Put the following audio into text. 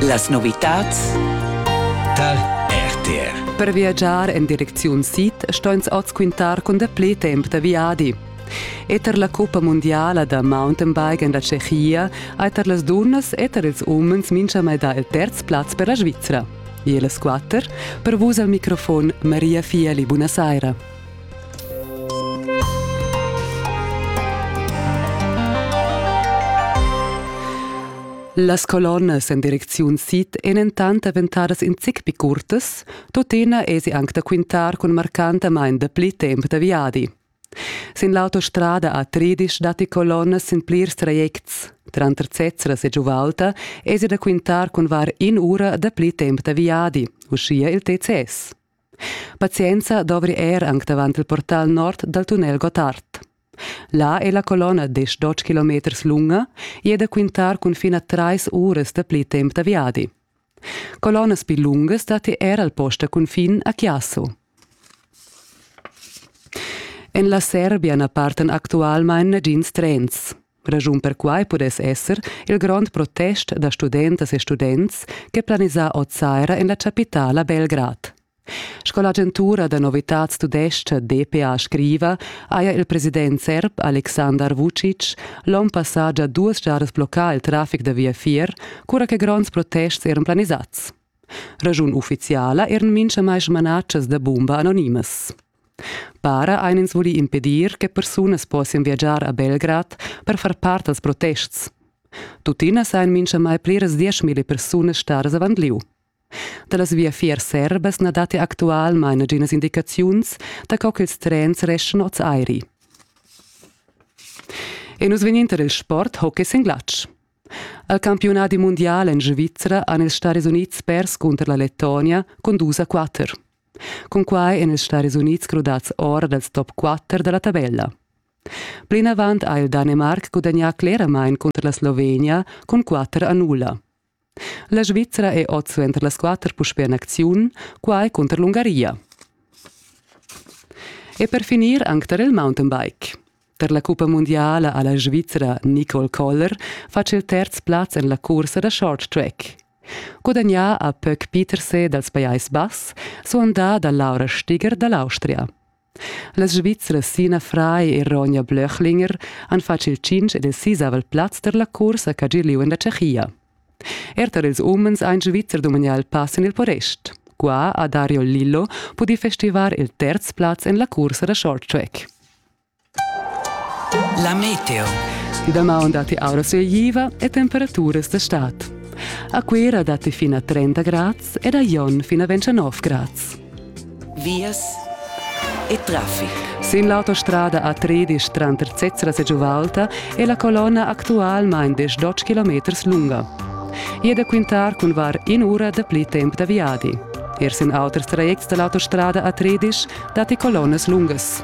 Las novitads dal RTR. Per viagiar en direcziun sid stoin oz quintar cun dapli temp da viadi. Eter la cuppa mundiala da mountainbike en la Tschechia ha eter las dunnas eter ils umens mintgamai dà il terz plaz per la Svizra. E las quatter, per vus al microfon Maria Fieli, buonasera. Las colonnas en direcziun sid ein entant daventadas in zic pli curtas, tuttina esi anc da quintar cun marcantamain dapli temp da viadi. Sin l'autostrada a Tridisch datti colonnas sin plirs trajects. Tranter Zezras e Giuvalta esi da quintar cun var in ura dapli temp da viadi, uschia il TCS. Pazienza dovri er anc davant il portal nord dal tunnel Gottard. Là è la colonna d'esch-dotg kilometers lunga e è da quintar cun fin a trais uras da pli temp da viadi. Colonnas pli lungas datti er al post da cunfin a Chiasso. En la Serbia na partan actualmain nagins trens. Raschun per quai pudess esser il grond protest da studentas e students che planisà oz saira en la chapitala Belgrad. Sco l'agentura da novitads tudestga DPA scriva, haja il president serb Aleksandar Vucic l'onn passà già duas giadas bloccà il traffic da viafier, cura che gronds protests eran planisats. Raschun uffiziala eran mintgamai smanatschas da bumba anonimas. Para ein ins vuli impedir che persunas possian viagiar a Belgrad per far part als protests. Tuttina sein minchamai pliras dieschmilli persunas stadas avant liu. Da las viafiers serbas na datti actualmain naginas indicaziuns da co ch'ils trens reschan oz airi. E nus vegnin tar il sport hockey sin glatsch. Al campiunadi mundial en Svizzera han ils Stati Unids pers cunter la Lettonia cun dus a quatter. Cunquai èn ils Staris Unids crudads or dals top quatter da la tabella. Plinavant ha il Danemarc gudagnà cleramain cunter la Slovenia cun quatter a nulla. La Svizra è oz suenter las quatter puspè en acziun, quai cunter l'Ungaria. E per finir anc tar il mountainbike. Per la cuppa mundiala ha la Svizra Nicole Koller fatg il terz plaz en la cursa da short track. Gudagnà ha Pöck Peterse dals Pajais Bass, suandà da Laura Stiger da l'Austria. Las Svizras Sina Frei e Ronja Blöchlinger han fatg il cinc ed il sisavel plaz per la cursa ch'ha gi lieu en la Tschechia. Er tar ils umens ha in Svizzer dumagnà il pass en il Porest. Qua ha Dario Lillo pudì festivar il terz plaz en la cursa da short track. La meteo. Damaun datti aura sueiva e temperaturas da stad. A Cuira datti fin a 30 grads ed a Jon fin a 29 grads. Vias e traffic. Sin l'autostrada A13 tranter Zezras e Giuvalta è la colonna actualmain 12 km lunga. I è da quintar cun var in'ura da pli temp da viadi. Er sin auters trajects da l'autostrada A13 datti colonnas lungas.